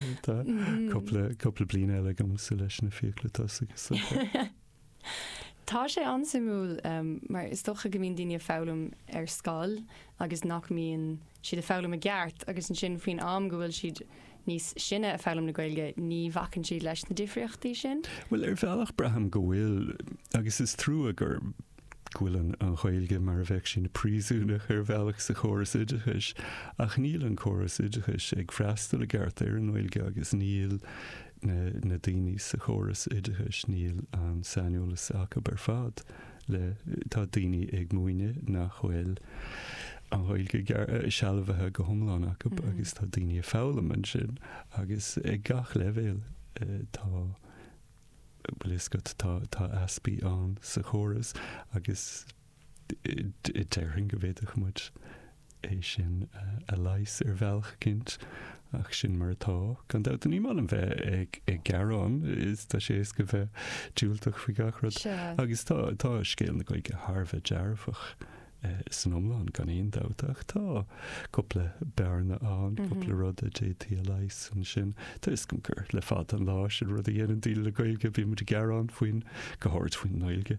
Tá cúpla, cúpla bliain eile agamsa leis na fiacla tosaigh sa bhfear. Tá sé an-suimiúil mar is dócha go mbíonn daoine ag foghlaim ar scoil agus nach mbíonn siad ag foghlaim i gceart agus ansin faoin am go bhfuil siad níos sine ag foghlaim na Gaeilge ní bhacann siad leis na difríochtaí sin. Bhuel, ar bhealach braithim go bhfuil agus is trua gur go bhfuileann an Ghaeilge mar a bheadh sí ina príosúnach ar bhealach sa chóras oideachais ach níl an córas oideachais ag freastal i gceart ar an nGaeilge agus níl na daoine sa chóras oideachais, níl an saineolas acu ar fad le, tá daoine ag múineadh nach bhfuil an Ghaeilge sealbhaithe go hiomlán acu agus tá daoine ag foghlaim ansin agus ag gach leibhéal tá. Bhfuil a fhios agat, tá, tá easpaí ann sa chóras agus déarfainn go bhféadfadh muid é sin a leigheas ar bhealach eicínt ach sin mar atá. Gan dabht, ní maith liom bheith ag gearán, is tá sé éasca bheith diúltach faoi gach rud agus tá scéal na Gaeilge thar a bheith dearfach san iomlán, gan aon dabht, ach tá cúpla bearna ann, cúpla rud a d'fhéadfaí a leigheas ansin. Tá a fhios againn gur le fada an lá an rud a dhéanann daoine le Gaeilge, bíonn muid ag gearán faoin, go háirid faoin nGaeilge,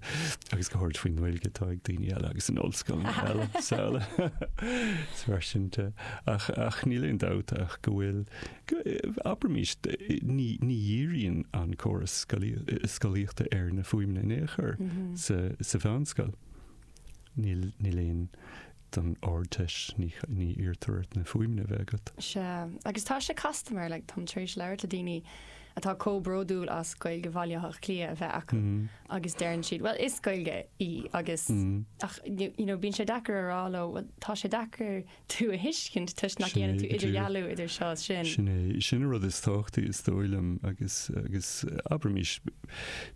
agus go háirid faoin nGaeilge atá ag daoine eile agus in ollscoileanna is araile. Is mar sin de. Ach, ach níl aon dabht ach go bhfuil, abraimís, ní, ní dhíríonn an córas scolaíochta ar na fuaimeanna in aon chor sa, sa mheánscoil. Níl aon don Ardteist, ní iarrtar ort na fuaimeanna a bheith agat. Sea, agus tá sé casta mar, like, táim tar éis labhairt le daoine atá comh bródúil as Gaeilge Bhaile Átha Cliath a bheith acu agus deireann siad, bhuel, is Gaeilge í agus, ach, you know, bíonn sé deacair a rá leo, bhuel, tá sé deacair tú a thuiscint toisc nach ndéanann tú idirdhealú idir seo is sin. Sin é, sin an rud is tábhachtaí is dóigh liom agus, agus, abraimís,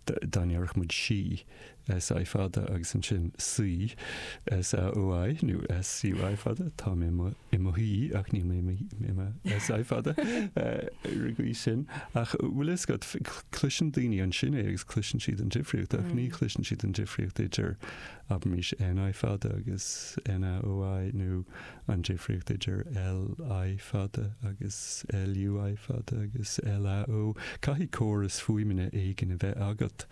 dá ndéarfadh muid sí, SI fada agus ansin suí, SAOI nó SUI fada, tá mé i mo, i mo shuí ach níl mé i mo, i mo SI fada, ar an gcaoi sin. Ach bhfuil a fhios agat, cloiseann daoine ansin é agus cloiseann siad an difríocht ach ní chloiseann siad an difríocht idir, abraimís, NI fada agus NAOI nó An difríocht idir LI fada agus LUI fada agus LAO, caithfidh córas fuaimeanna éigin a bheith agat,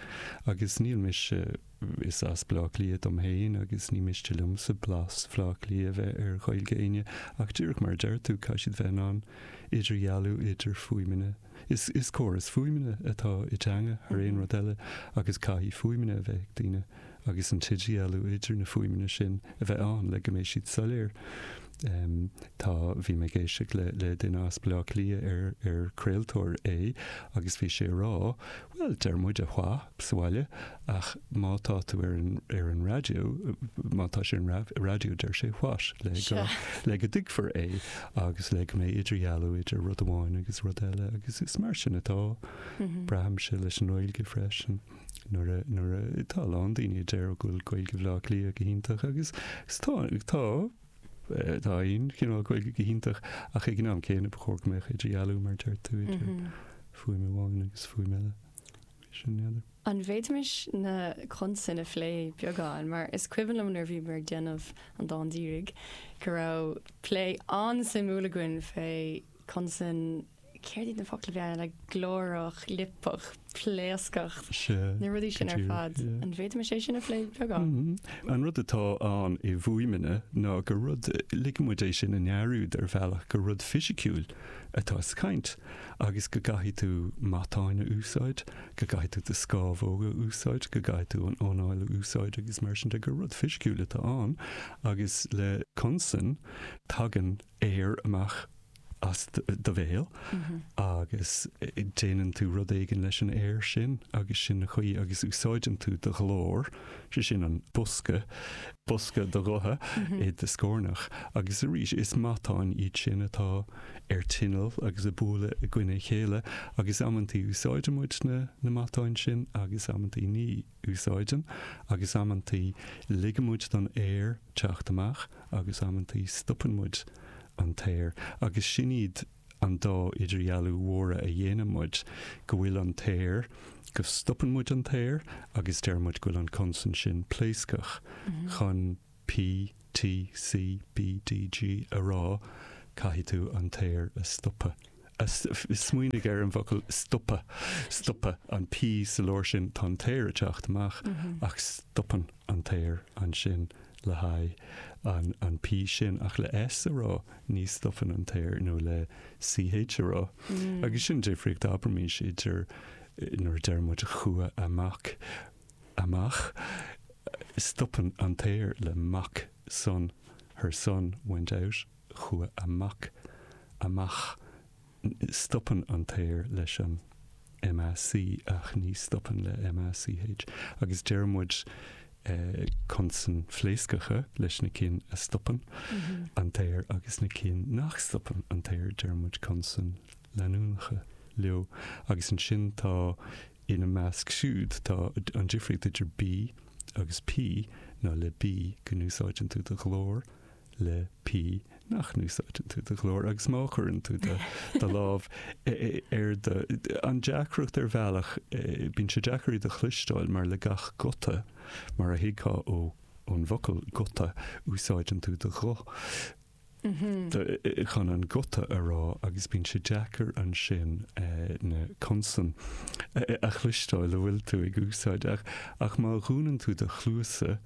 agus ní miste, is as Bleá Cliath dom féin agus ní miste liomsa blas Bhleá Cliath a bheith ar Ghaeilge éinne, ach díreach mar a deir tú, caithfidh siad bheith in ann idirdhealú idir fuaimeanna. Is córas fuaimeanna atá i dteanga thar aon rud eile agus caithfidh fuaimeanna a bheith ag daoine agus an t-idirdhealú idir na fuaimeanna sin a bheith ann le go mbeidh siad soiléir. Tá, bhí mé ag éisteacht le le duine as Bleá Cliath ar ar craoltóir é agus bhí sé ag rá, bhuel deir muide 'wha' sa bhaile Ach má tá tú ar an, ar an raidió, má tá sé ar an ra, raidió deir sé what? le go, Sure. le go dtuigfear é agus le go mbeidh idirdhealú idir rud amháin agus rud eile agus is mar sin atá, braithimse, leis an nGaeilge freisin. Nuair a, nuair a, tá a lán daoine a deir go bhfuil Gaeilge Bhleá Cliath go hiontach agus, agus tá, tá, eh, tá aon chineál Gaeilge go hiontach ach ag an am céanna ba chóir go mbeadh idirdhealú mar deir tú idir fuaim amháin agus fuaim eile. Sin an ea. An bhféadfaimis na consain a phlé beagán, mar is cuimhin liom nuair a bhíomar ag déanamh An Dán Díreach go raibh plé an-suimiúil againn fé consain, céard iad na focla beaga, like glórach, liopach, pléascach, na rudaí sin ar fad. An bhféadfaimis é sin a phlé beagán? An rud atá ann i bhfuaimeanna ná gur rud, ligeann muid é sin i ndearúd ar bhealach, gur rud fisiciúil atá sa chaint agus go gcaithfidh tú matáin a úsáid go gcaithfidh tú do scámhóg a úsáid, go gcaithfidh tú an anáil a úsáid agus mar sin de, gur rud fisiciúil atá ann agus le consain tagann aer amach as do bhéal agus déanann tú rud éigin leis an aer sin agus sin an chaoi agus úsáideann tú do ghlór, sé sin an bosca, bosca do ghutha i do scornach agus arís is matáin iad sin atá ar tinneall agus ag bualadh i gcoinne a chéile agus amanntaí úsáideann muid na na matáin sin agus amanntaí ní úsáideann agus amanntaí ligeann muid don aer teacht amach agus amanntaí stopann muid an t-aer agus sin iad an dá idirdhealú mhóra a dhéanann muid go bhfuil an t-aer go stopann muid an t-aer agus deir muid go bhfuil an consan sin pléascach chun P, T, C, B, D, G, a rá, caithfidh tú an t-aer a stopadh, a, smaoinigh ar an bhfocal stopadh, stopadh an P sa lár sin, tá an t-aer ag teacht amach ach stopann an t-aer ansin le haghaidh an, an P sin ach le S a rá ní stopann an t-aer nó le CH a rá agus sin difríocht abraimís idir nuair a deir muid chuaigh amach amach, stopann an t-aer le mac son her son went out chuaigh a mac amach stopann an t-aer leis an MAC ach ní stopann le MACH agus deir muid consain phléascacha leis na cinn a stopann an t-aer agus na cinn nach stopann an t-aer deir muid consain leanúnacha leo agus ansin tá Ina measc siúd tá an difríocht idir B agus P ná le B go n-úsáideann tú do ghlór, le P nach n-úsáideann tú do ghlór agus má chuireann tú do do lámh ar do An deacracht ar bhealach, bíonn sé deacair iad a chloisteáil mar le gach guta, mar a thuigfeá ó ón bhfocal guta, úsáideann tú do ghuth. chun an guta a rá agus bíonn sé deacair ansin na consain a chloisteáil a bhfuil tú ag úsáid. Ach má dhúnann tú do chluasa,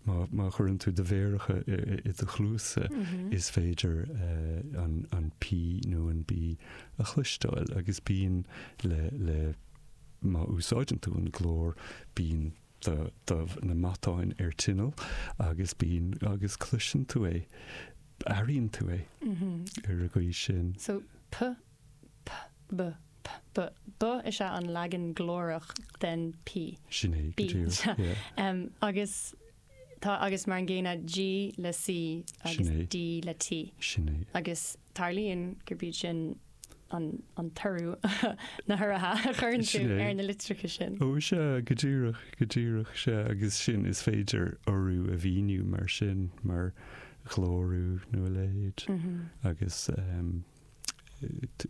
má chuireann tú do mhéaracha i do chluasa, is féidir an P nó an B a chloisteáil agus bíonn le má úsáideann tú an glór bíonn do do na matáin ar tinneall agus bíonn agus cloiseann tú é, airíonn tú é ar an gcaoi sin. So p, p, b, p, b, b is ea an leagan glórach den p. Sin é, go díreach, yeah. Agus tá, agus mar an gcéanna, g le c agus d le t. Sin é. Agus tarlaíonn gurb iad sin an t-urú, na huruithe a chuireann tú ar na litreacha sin. Ó, sea, go díreach, go díreach, sea, agus sin, is féidir urú a mhíniú mar sin, mar ghlórú nó a leithéid, agus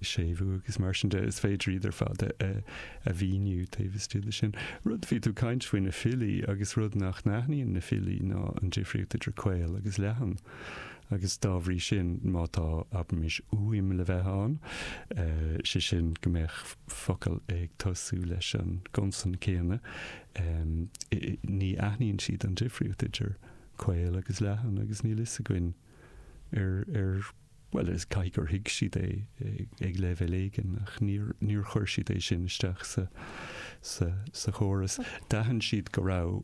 séimhiú agus mar sin de, is féidir iad ar fad a mhíniú taobh istigh de sin. Rud, bhí tú ag caint faoi na filí agus rud nach n-aithníonn na filí ná an difríocht idir caol agus leathan. agus dá bhrí sin, má tá, abraimis, uaim le bheith ann, sé sin, go mbeadh focal ag tosú leis an gconsan céanna, ní aithníonn siad an difríocht idir caol agus leathan agus níl fhios againn ar, ar, bhuel, is, caithfidh gur thuig siad é ag leibhéal éigin ach níor, níor chuir siad é sin isteach sa, sa, sa chóras. D'aithin siad go raibh.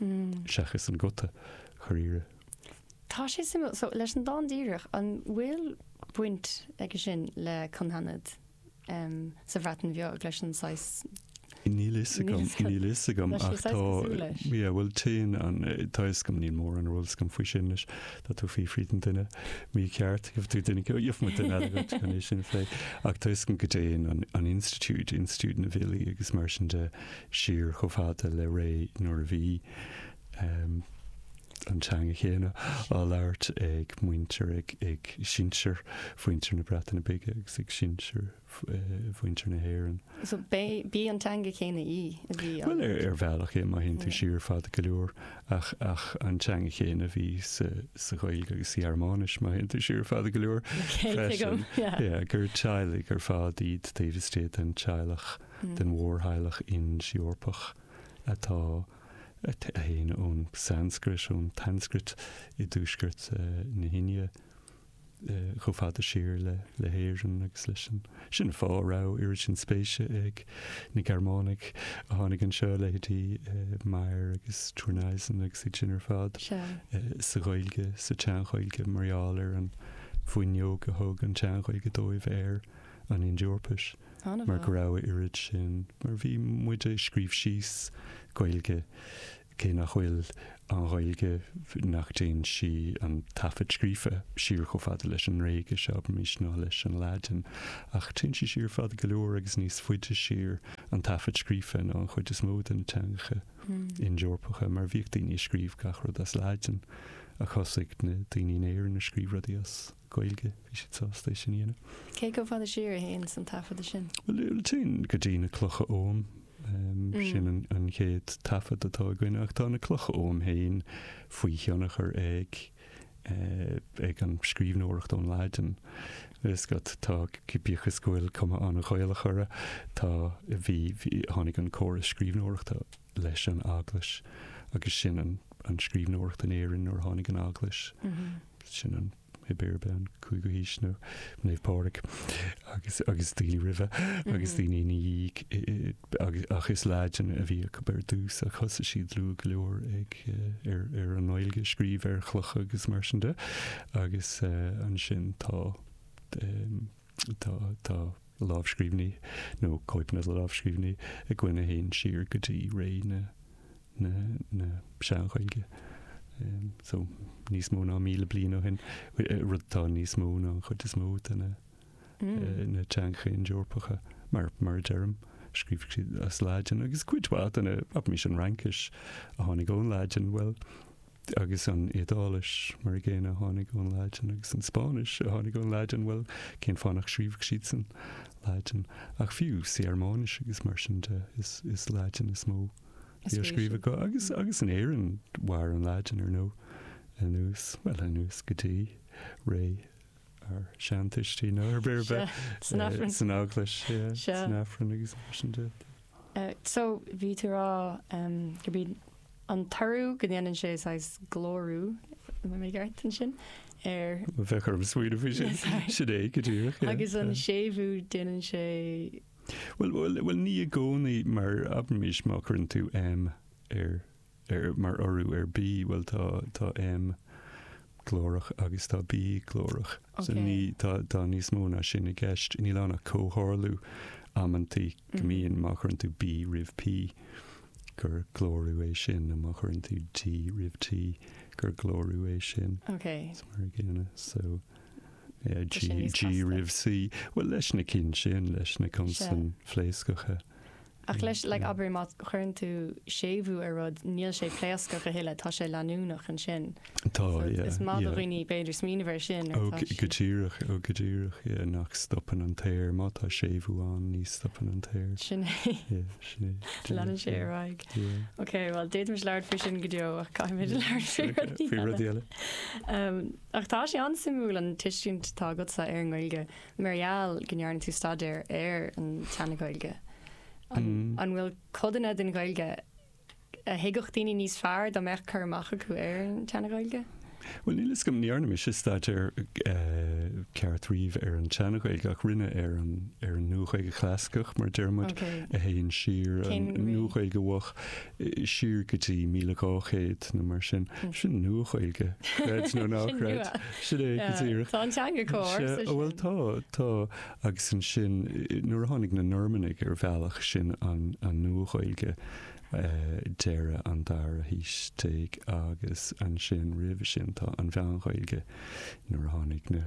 seachas an guta dháiríre. Tá sé suimiúil. So, leis an dán díreach, an bhfuil baint aige sin le cynghanedd sa Bhreatain Bheag, leis an saghas? Níl fhios agam, níl fhios agam, ach tá, Tá sé saghas cosúil leis. yeah, bhuel, téann an, tá fhios agam, níl mórán ar eolas agam faoi sin, leis, tá tú ag fiafraí den duine mícheart, gheobhaidh tú duine, gheobhaidh muid duine eile dhuit chun é sin a phlé, ach tá fhios agam go dtéann an, an institiúid, institiúid na bhfilí agus mar sin de, siar chomh fada le ré nuair a bhí an teanga chéanna á labhairt ag muintir, ag sinsir mhuintir na Breataine Bige agus ag sinsir mhuintir na hÉireann. So b'í an teanga chéanna í a bhí á labhairt? Bhuel, ar bhealach é, má théann tú siar fada go leor, ba í an teanga chéanna a bhí sa Ghaeilge agus sa Ghearmáinis, má théann tú siar fada go leor, freisin. Gur teaghlaigh ar fad iad taobh istigh den teaghlach. den mhórtheaghlach Ind-Eorpach atá a théann ón Sanscrait, ón tSanscrait i dtuaisceart na hIndia, chomh fada siar le hÉirinn agus leis an. Sin an fáth a raibh oiread sin spéise ag na Gearmánaigh a tháinig anseo, leithéidí Meyer agus Thurneysen agus iad sin ar fad, sa Ghaeilge, sa tSean-Ghaeilge mar gheall ar an bhfuinneog a thug an tSean-Ghaeilge dóibh ar. an Ind-Eorpais, mar go raibh a oiread sin, mar bhí muid a' scríobh síos Gaeilge, cé nach bhfuil an Ghaeilge, nach dtéann sí, an taifead scríofa, siar chomh fada leis an nGréigis, abraimís, ná leis an Laidin, ach téann sí siar fada go leor agus níos faide siar, an taifead scríofa, ná an chuid is mó de na teangacha Ind-Eorpacha, mar bhíodh daoine a' scríobh gach rud as Laidin, ach thosaigh na daoine in Éirinn a' scríobh rudaí as. Gaeilge, bhí siad sásta é sin a dhéanamh. Cé chomh fada siar a théann an taifeadadh sin? Bhuel, téann go dtí na Clocha Oghaim, sin an chéad taifead atá againn, ach tá na Clocha Oghaim féin faoi thionchar ag an scríbhneoireacht ón Laidin. Bíodh is go bhfuil cuma an-Ghaelach orthu, tháinig an córas scríbhneoireachta. leis an Eaglais agus sin an an scríbhneoireacht in Éirinn nuair a tháinig an Eaglais, sin an, pé ar bith, an cúigiú haois nó Naomh Pádraig agus agus daoine roimhe agus daoine ina dhiaidh i i agus ach is Laidin a bhí acu ar dtús ach thosaigh siad luath go leor ag ar an nGaeilge a scríobh ar chlocha agus mar sin de agus ansin tá tá tá lámhscríbhinní nó cóipeanna de lámhscríbhinní againn a théann siar go dtí ré na Sean-Ghaeilge, so níos mó ná míle bliain ó shin, rud atá níos mó ná an chuid is mó de na teangacha Ind-Eorpacha, mar a deirim. Scríobhadh siad as Laidin agus cuid mhaith de na, abraimis, an Fhraincis a tháinig ón Laidin, bhuel, Agus an Iodáilis, mar a gcéanna, a tháinig ón Laidin, agus an Spáinnis, a tháinig ón Laidin, bhuel, cén fáth nach scríobhadh siad san Laidin? Ach fiú sa Ghearmáinis agus mar sin de, is Laidin is mó a bhí á scríobh acu. Agus, agus in Éirinn, mhair an Laidin, ar ndóigh, anuas, bhuel, anuas go dtí ré ár seantuistí, nó ar ar bith, san Eaglais, san Aifreann agus mar sin de. So, bhí tú ag rá gurb é an t-urú go ndéanann sé saghas glórú, an bhfuil mé i gceart ansin? Bheadh orm smaoineamh faoi sin. Sin é go díreach. Agus an séimhiú déanann sé. Bhuel, ní i gcónaí, mar abraimís má chuireann tú M ar, mar urú ar B, bhuel tá, tá M glórach agus tá B glórach. So ní, tá, tá níos mó ná sin i gceist. Níl ann ach comhtharlú amantaí go mbíonn, má chuireann tú B roimh P gur glórú é sin nó má chuireann tú D roimh T gur glórú é sin. OK. So mar a gcéanna. So yeah, G, G roimh C. Well leis na cinn sin, leis na consain phléascacha. Ach leis, like, abair má chuireann tú séimhiú ar rud, níl sé pléascach a thuilleadh, tá sé leanúnach ansin. Tá, yeah, yeah. So is maith do dhaoine, b'fhéidir, smaoineamh air sin. Ó, go díreach, ó, go díreach, yeah, nach stopann an t-aer, má tá séimhiú ann, ní stopann an t-aer. Sin é. Yeah, sin é. Leanann sé ar aghaidh. Yeah. Ok, bhuel, d'fhéadfaimis labhairt faoi sin go deo, ach caithfimid labhairt faoi rudaí eile. Faoi rudaí eile. Ach tá sé an-suimiúil an tuiscint atá agatsa ar an nGaeilge, Mar gheall go ndearna tú staidéar ar an tSean-Ghaeilge, an bhfuil codanna den Ghaeilge a thuigfeadh daoine níos fearr dá mbeadh cur amach acu ar an tSean-Ghaeilge? Bhuel, níl 'fhios agam, ní dhearna mise staidéar ceart riamh ar an tSean-Ghaeilge ach rinne ar an Nua-Ghaeilge Chlasaiceach, mar a deir muid, a théann siar, an Nua-Ghaeilge Mhoch. siar go dtí 1200 nó mar sin. Sin Nua-Ghaeilge, creid nó ná creid. Sin é go díreach. Tá an teanga cóir sa sin. Bhuel tá, tá. Agus ansin, nuair a tháinig na Normannaigh ar bhealach, sin an Nua-Ghaeilge deireadh an dara haois déag agus ansin, roimhe sin, tá an Mheán-Ghaeilge nuair a tháinig na.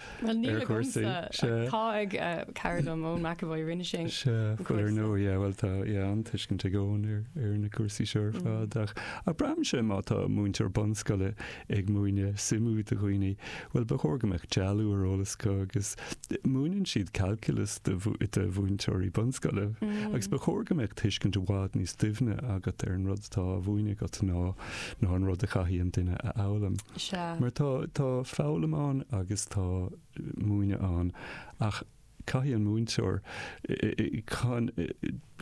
Bhuel níl sé agamsa, tá ag cara liom, Eoin McEvoy, rinne sé an cúrsa. Sea, bhuel ar ndóigh, yeah, bhuel tá, yeah, an-tuiscint ag Eoin ar na cúrsaí seo ar fad ach ach braithimse má tá múinteoir bunscoile ag múineadh suimiú do dhaoine, bhuel ba chóir go mbeadh dealú ar eolas acu agus múineann siad calculus do mhúinteoirí bunscoile agus ba chóir go mbeadh tuiscint i bhfad níos doimhne agat ar an rud atá á mhúineadh agat ná ná an rud a chaithfidh an duine a fhoghlaim. Mar tá, tá foghlaim ann agus tá múineadh ann ach caithfidh an múinteoir, chun,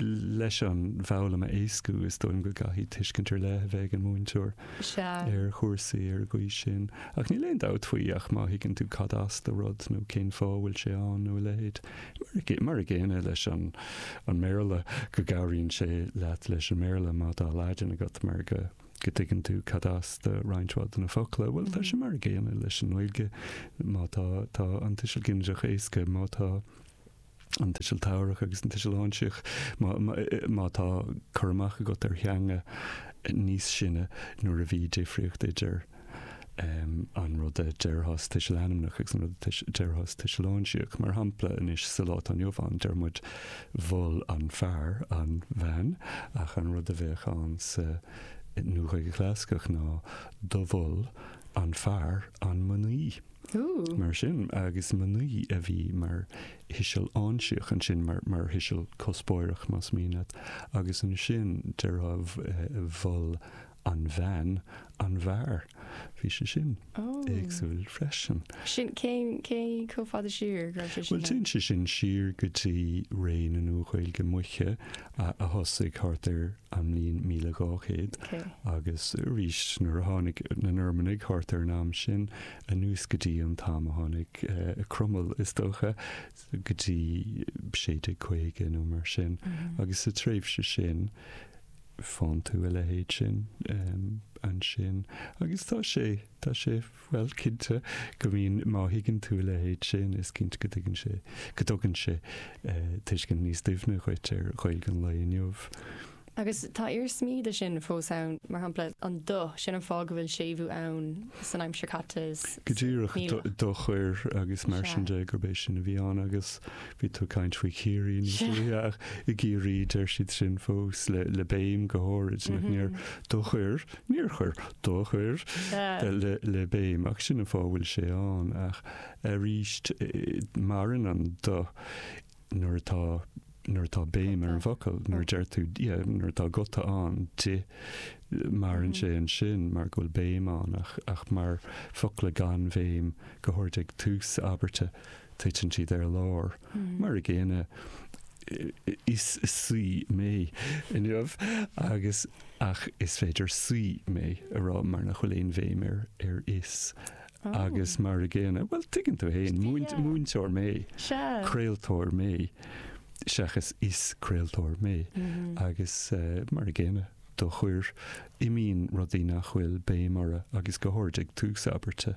leis an bhfoghlaim a éascú is dóigh liom go gcaithfidh tuiscint ar leith a bheith ag an múinteoir ar chúrsaí ar an gcaoi sin. Ach níl aon dabht faoi ach má thuigeann tú cad as do rud nó cén fáth a bhfuil sé ann nó a leithéid, Mar a gcéanna leis an mBéarla, go gcabhraíonn sé leat leis an mBéarla má tá Laidin agat mar go dtuigeann tú cad as do roinnt mhaith de na focla. Bhuel, tá sé mar a gcéanna leis an nGaeilge má tá, tá an tuiseal ginideach éasca, má tá an tuiseal tabharthach agus an tuiseal áinsíoch, má, má tá cur amach agat ar theanga níos sine nuair a bhí difríocht idir. an rud a déarfas tuiseal ainmneach agus an rud a déarfas tuiseal áinsíoch. Mar shampla, anois sa lá atá inniu ann, deir muid mhol an fear an bhean, ach an rud a bheadh ann sa Nua-Ghaeilge Chlasaiceach ná do mhol an fear an mnaoi. Mar sin, agus mnaoi a bhí mar thuiseal áinsíoch ansin, mar thuiseal cuspóireach, más mian leat, agus ansin déarfá mhol An bhean, an bhfear, bhí sé sin éagsúil freisin. Sin, cén, cé chomh fada siar a raibh sé sin? Bhuel, téann sé sin siar go dtí ré na Nua-Ghaeilge Moiche a thosaigh thart ar an mbliain 1200 agus arís nuair a tháinig na Normannaigh thart ar an am sin, anuas go dtí an t-am a tháinig Cromail, is dócha, go dtí 1650 nó mar sin. Agus sa tréimhse sin, Faigheann tú a leithéid sin ansin agus tá sé, tá sé, bhuel, cinnte go mbíonn, má thuigeann tú a leithéid sin is cinnte go dtuigeann sé, go dtugann sé tuiscint níos doimhne dhuit ar Ghaeilge an lae inniu. Agus tá iarsmaí de sin fós ann, mar shampla, an do, sin an fáth go bhfuil séimhiú ann san aimsir caite is, is, níl ach. Go díreach do chuir agus mar sin de gurb é sin a bhí ann agus. Bhí tú ag caint faoi Chiarraí níos luaithe ach i gCiarraí deir siad sin fós le béim go háirid nach níor do chuir, níor chuir, do chuir le béim ach sin an fáth a bhfuil sé ann ach arís maireann an do nuair atá, nuair atá béim ar an bhfocal, nuair a deir tú, yeah, nuair atá guta ann d'ith maireann sé ansin mar go bhfuil béim ann ach mar focla gan bhéim go háirid ag tús abairte. titeann siad ar lár mar a gcéanna is saoi mé inniu agus ach is féidir saoi mé a rá mar nach bhfuil aon bhéim ar ar is agus mar a gcéanna, bhuel tuigeann tú fhéin, múint, múinteoir mé, craoltóir mé seachas is craoltóir mé agus mar a gcéanna do chuir imíonn rudaí nach bhfuil béim orthu agus go háirid ag tús abairte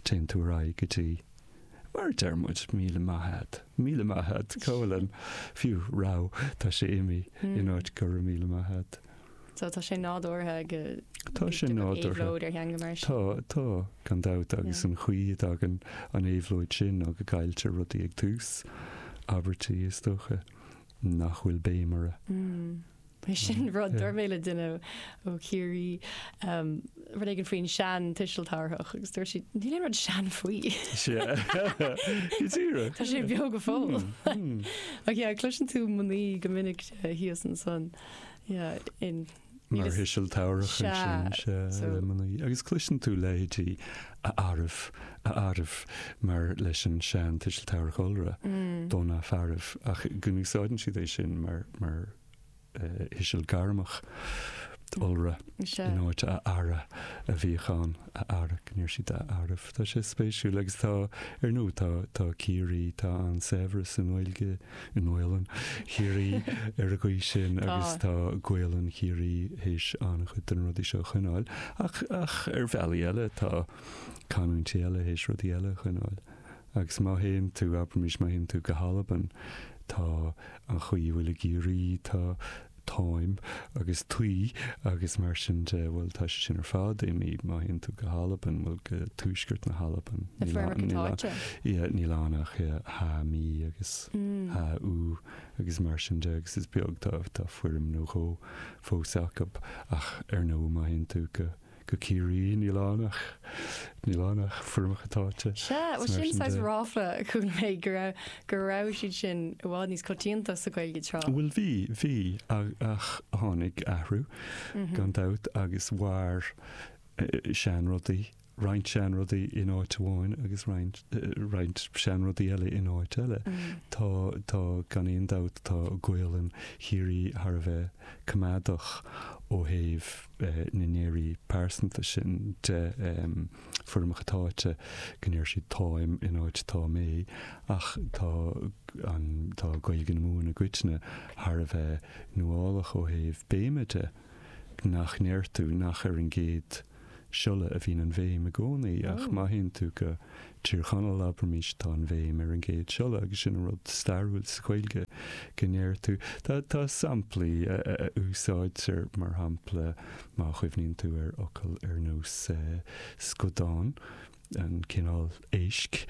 téann tú ar aghaidh go dtí Mar a deir muid, míle maith ad. Míle maith ad, go bhfuil an fiú, go raibh, tá sé imithe in áit go raibh míle maith ad. So tá sé nádúrtha go bhfuil Tá sé nádúrtha. éabhlóid ar theanga mar sin. Tá, tá, gan dabht, agus an chaoi a dtagann an éabhlóid sin ná go gcailltear rudaí ag tús abairtí, is dócha. nach bhfuil béim orthu. Bhuel, sin rud a dúirt mé le duine ó Chiarraí rud éigin faoin sean tuiseal tabharthach agus dúirt siad, níl aon rud sean faoi. Go díreach. Tá sé beo go fóill. Ach yeah, cloiseann tú mnaoi go minic thíos ansan, yeah, in. Mar thuiseal tabharthach ansin is ea le mnaoi, agus cloiseann tú leithéidí a Fhearaibh, a Fhearaibh, mar leis an sean tuiseal tabharthach iolra, do na fearaibh, ach go n-úsáideann siad é sin mar, mar thuiseal gairmeach iolra in áit a Fheara a bhíodh ann, a Fheara, go ndeir siad a Fhearaibh. Tá sé spéisiúil, agus tá, ar ndóigh, tá, tá Ciarraí, tá an-saibhreas i nGaeilge. i nGaolainn Chiarraí ar an gcaoi sin agus tá Gaolainn Chiarraí théis an-chuid de na rudaí seo a choinneáil ach, ach ar bhealaí eile tá canúintí eile théis rudaí eile a choinneáil agus má théann tú, abraimís, má théann tú go hAlbain tá an chaoi a bhfuil i gCiarraí, tá. táim, agus taoi, agus mar sin de, bhuel, tá sé sin ar fad imithe, má théann tú go hAlbain, bhuel, go tuaisceart na hAlban, na foirmeacha táite. Yeah, níl ann ach yeah, tha mi, agus tha thu, agus mar sin de, agus is beag, tá, tá foirm nó dhó fós acu, ach ar ndóigh, má théann tú go, go Ciarraí, níl ann ach níl ann ach foirmeacha táite. Sea, well mar sin de. Sin sin saghas ráfla a chuala mé go raibh go raibh siad sin i bhfad níos coitianta sa Ghaeilge tráth. Bhuel bhí, bhí, ach ach tháinig athrú gan dabht agus mhair eh, seanrudaí, roinnt seanrudaí in áit amháin agus roinnt eh, roinnt seanrudaí eile in áit eile. Tá, tá gan aon dabht tá Gaolainn Chiarraí thar a bheith coimeádach ó thaobh, na ndeirí pearsanta sin de foirmeacha táite go ndeir siad 'táim' in áit 'tá mé' ach tá an, tá Gaeilge na Mumhan i gcoitinne thar a bheith nuálach ó thaobh béime de, nach ndeir tú nach ar an gcéad siolla a bhíonn an bhéim i gcónaí ach má théann tú go Tír Chonaill abraimis tá an bhéim ar an gcéad siolla agus sin an rud stairiúil sa Ghaeilge go ndeir tú. Tá samplaí a úsáidtear mar shampla má chuimhníonn tú ar fhocail ar nós scudán, an cineál éisc,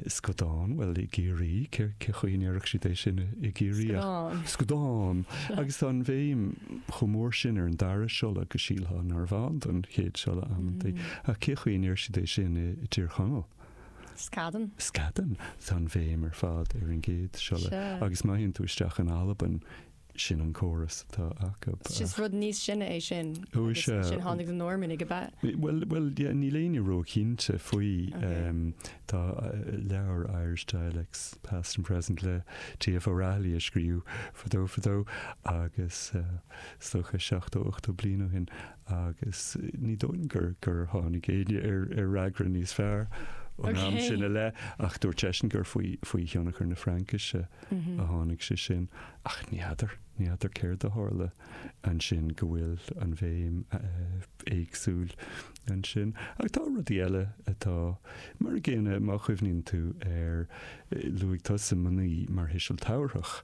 scudán, bhuel i gCiarraí cén chaoi a ndéarfadh siad é sin i gCiarraí ach Scudán. scudán. Agus tá an bhéim chomh mór sin ar an dara siolla go sílfeá narbh ann don chéad siolla amantaí. Ach cé chaoi a ndeir siad é sin i dTír Chonaill? Scadan. Scadan. Tá an bhéim ar fad ar an gcéad siolla. Sure. Agus má théann tú isteach in Albain, sin an córas atá acu. Is just rud níos sine é sin. Ó, is ea. Agus ansin tháinig na Normannaigh, ab ea? Bhuel, bhuel, yeah, níl éinne ró-chinnte faoi. Ok. Em, tá leabhar Irish Dialects, Past and Present le TF O'Rahilly a scríobhadh fadó, fadó, agus, eh, is dócha, seachtó, ochtó bliain ó shin. agus ní dóigh liom gur tháinig éinne ar fhreagra níos fearr ón am sin i leith, ach dúirt seisean gur faoi thionchar na Fraincise a tháinig sé sin. Ach ní fheadar, ní fheadar céard a tharla ansin go bhfuil an bhéim éagsúil ansin. Ach tá rudaí eile atá mar an gcéanna, má chuimhníonn tú ar, luaigh tusa 'mnaoi' mar thuiseal tabharthach,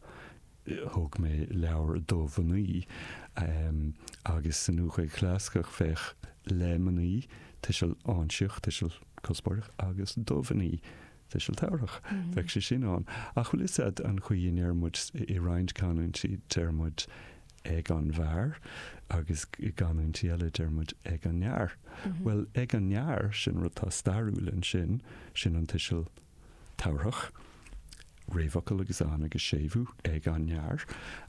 thug mé leabhar do mhnaoi agus sa Nua-Ghaeilge Chlasaiceach bheadh le mnaoi, tuiseal áinsíoch, tuiseal cuspóireach, agus do mhnaoi, tuiseal tabharthach. Bheadh sé sin ann. Ach bhfuil 'fhios a'd an chaoi a ndeir muid i roinnt canúintí, deir muid ag an bhfear agus i gcanúintí eile deir muid ag an fhear. Bhuel, ag an fhear, sin rud atá stairiúil ansin, sin an tuiseal tabharthach, réamhfhocal agus an agus séimhiú ag an fhear,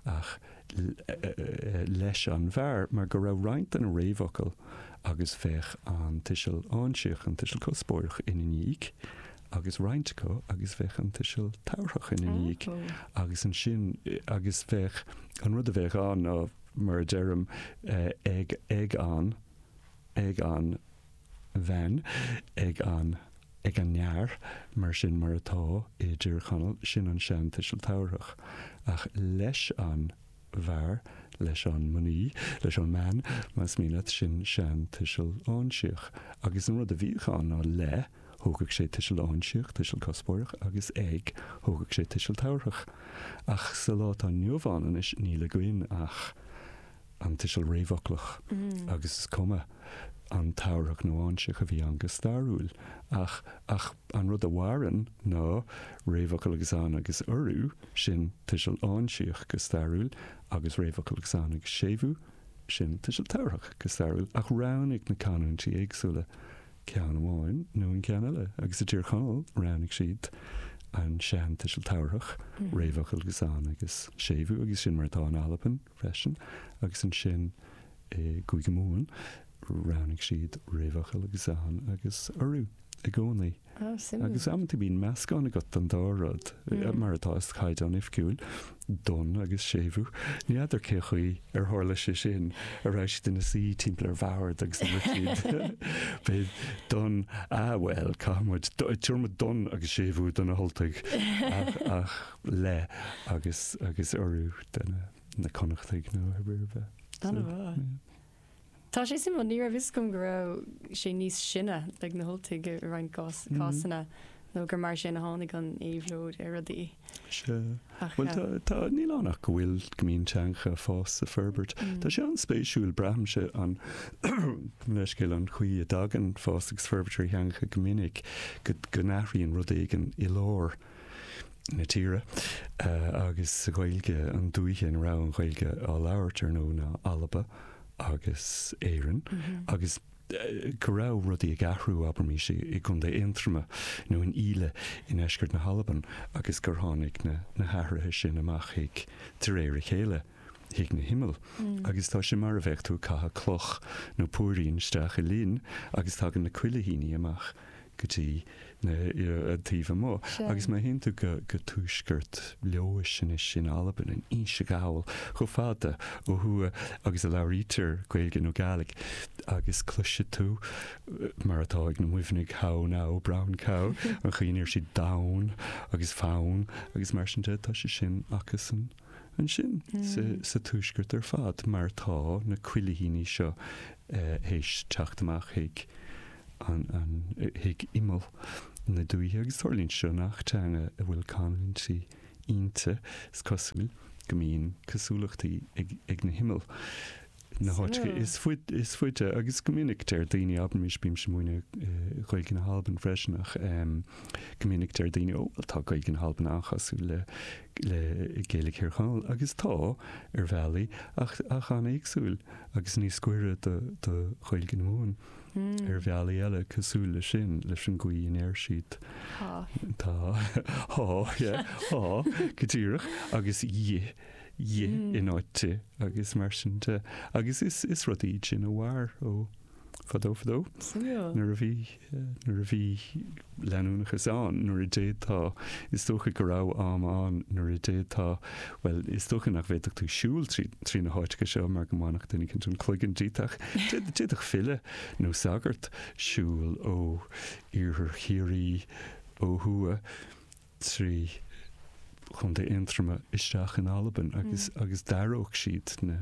ach leis an bhfear, mar go raibh roinnt de na réamhfhocail agus bheadh an tuiseal áinsíoch, an tuiseal cuspóireach, ina ndiaidh, agus roinnt acu agus bheadh an tuiseal tabharthach ina ndiaidh. Agus ansin, agus bheadh, an rud a bheadh ann ná, mar a deirim, ag, ag an, ag an, bhean, ag an, ag an fhear, mar sin, mar atá i dTír Chonaill, sin an seantuiseal tabharthach, ach leis an bhfear, leis an mnaoi, leis an mbean, más mian leat, sin seantuiseal áinsíoch. Agus an rud a bhíodh ann ná le, thógadh sé tuiseal áinsíoch, tuiseal cuspóireach, agus ag, thógadh sé tuiseal tabharthach. Ach sa lá atá inniu ann anois, níl againn ach. an tuiseal réamhfhoclach agus is cuma an tabharthach nó áinsíoch a bhí ann go stairiúil ach ach an rud a mhaireann ná réamhfhocal agus an agus urú, sin tuiseal áinsíoch go stairiúil, agus réamhfhocal agus an agus séimhiú, sin tuiseal tabharthach go stairiúil, ach roghnaigh na canúintí éagsúla ceann amháin nó an ceann eile agus i dTír Chonaill roghnaigh siad an sean-tuiseal tabharthach, réamhfhocal agus an agus séimhiú, agus sin mar atá in Albain. freisin, agus ansin i gCúige Mumhan roghnaigh siad réamhfhocal agus an t-alt agus urú i gcónaí. Á, suimiúil. Agus amanta bíonn meascán agat den dá rud, mar atá sa chaighdeán oifigiúil, don agus séimhiú. Ní fheadar cé chaoi ar tharla sé sin, an raibh siad ina suí timpeall ar bhord agus dúirt siad faoi don, ah bhuel, caithfidh muid, tabharfaidh muid don agus séimhiú do na hUltaigh, ach, ach. leis agus urú do na na Connachtaigh nó ar ar bith. Ana So, mhaith. yeah. Tá sé suimiúil, ní raibh fhios agam go raibh sé níos sine ag na hUltaigh i roinnt gás- cásanna nó gur mar sin a tháinig an éabhlóid ar rudaí. Sea. Ach Bhuel, tá, tá, níl ann ach go bhfuil, go mbíonn teangacha ag fás is ag forbairt. Tá sé an-spéisiúil, braithimse, gabh mo leithscéal, an chaoi a dtagann fás agus forbairt ar theangacha go minic, go, go n-athraíonn rud éigin i lár. na tíre agus sa Ghaeilge an dúiche ina raibh an Ghaeilge á labhairt ar ndóigh ná Alba agus Éirinn agus go raibh rudaí ag athrú abraimis i gContae Aontroma nó in Íle i ndeisceart na hAlban agus gur tháinig na hathruithe sin amach chuig de réir a chéile. chuig na himill, agus tá sé mar a bheadh tú ag caitheadh cloch nó púirín isteach i linn agus tagann na cuilithíní amach go dtí na, an taobh amuigh. Agus má théann tú go, go tuaisceart Leodhais anois in Albain, in Inse Ghall, chomh fada ó thuaidh agus a labhraítear Gaeilge nó Gaidhlig agus cloisfidh tú, mar atá ag na Muimhnigh, how now, brown cow, an chaoi a ndeir siad donn agus fonn agus mar sin de, tá sé sin acusan. ansin sa tuaisceart ar fad mar tá na cuilithíní seo théis teacht amach chuig imeall na dúiche agus tarlaíonn seo i ngach teanga a bhfuil canúintí inti, is cosúil go mbíonn cosúlachtaí ag na himill. na háiteanna is faide agus go minic deir daoine, abraimis bímse ag múineadh Gaeilge na hAlban freisin ach go minic deir daoine ó bhuel tá Gaeilge na hAlban an-chosúil le le Gaeilge Thír Chonaill agus tá ar bhealaí ach ach an-éagsúil agus níos goire do do Ghaeilge na Mumhan ar bhealaí eile cosúil le sin leis an gcaoi a ndeir siad tá tá tá yeah tá go díreach agus dhi 'dhi' in áit 'di' agus mar sin de. Agus is is rudaí iad sin a mhair ó fadó fadó. Nuair a bhí, nuair a bhí leanúnachas ann, nuair a d'fhéadfá, is dócha go raibh am ann nuair a d'fhéadfá, bhuel, is dócha nach bhféadfadh tú siúl trí trí na háiteacha seo mar go mbainfeadh duine éicint an cloigeann díot ach d'fhéad d'fhéadfadh file nó sagart siúl ó iarthar Chiarraí ó thuaidh. trí Chontae Aontroma isteach in Albain agus agus d'aireodh siad na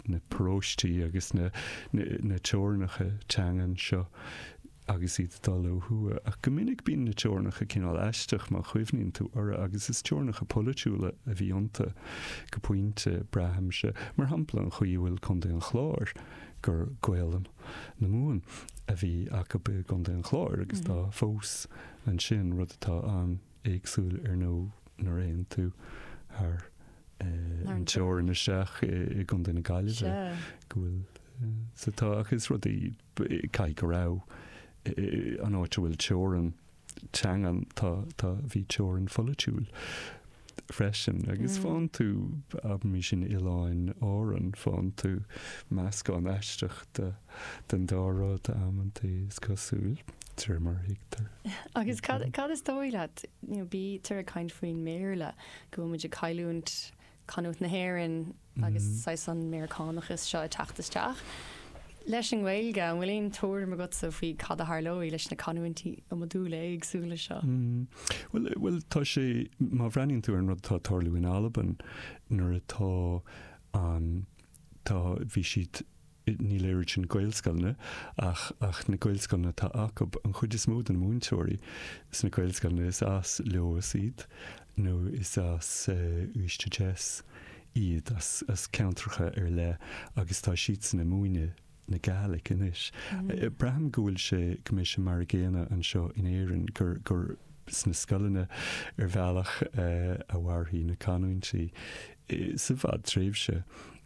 na paróistí agus na na teorainneacha teangan seo agus iad dul ó thuaidh. Ach go minic bíonn na teorainneacha cineál aisteach má chuimhníonn tú orthu agus is teorainneacha polaitiúla a bhí iontu go pointe, braithimse. Mar shampla, an chaoi a bhfuil Contae an Chláir, gur Gaolainn na Mumhan a bhí acu i gContae an Chláir agus tá fós, Ansin, rud atá an-éagsúil ar ndóigh nuair a théann tú thar an teorainn isteach i gContae na Gaillimhe, go bhfuil sé, tá, ach is rudaí, caithfidh go raibh, an áit a bhfuil teorainn teanga, tá, bhí teorainn pholaitiúil. freisin agus faigheann tú, abraimis in Oileáin Árann, faigheann tú meascán aisteach den dá rud amantaí, is cosúil, de réir mar a thuigtear. Agus cad, cad is dóigh leat, bítear ag caint faoin mBéarla, go bhfuil muid ag cailliúint canúint na hÉireann, agus saghas an Meiriceánachas seo ag teacht isteach. Leis an nGaeilge, an bhfuil aon tuairim agatsa faoi cad a tharlóidh leis na canúintí iomadúla éagsúla seo? Bhuel, tá sé, má bhreathnaíonn tú ar an rud atá ag tarlú in Albain, nuair atá an, tá, bhí siad, níl éirí sna Gaelscoileanna ach ach na Gaelscoileanna atá acu, an chuid is mó de na múinteoirí sna Gaelscoileanna is as Leòdhas iad nó is as Uibhist a Deas iad, as as ceantracha ar leith agus tá siadsan ag múineadh na Gàidhlig anois. Braithim go bhfuil sé, go mbeidh sé mar a gcéanna anseo in Éirinn, gur gur sna scoileanna ar bhealach a mhairfidh na canúintí sa bhfadtréimhse.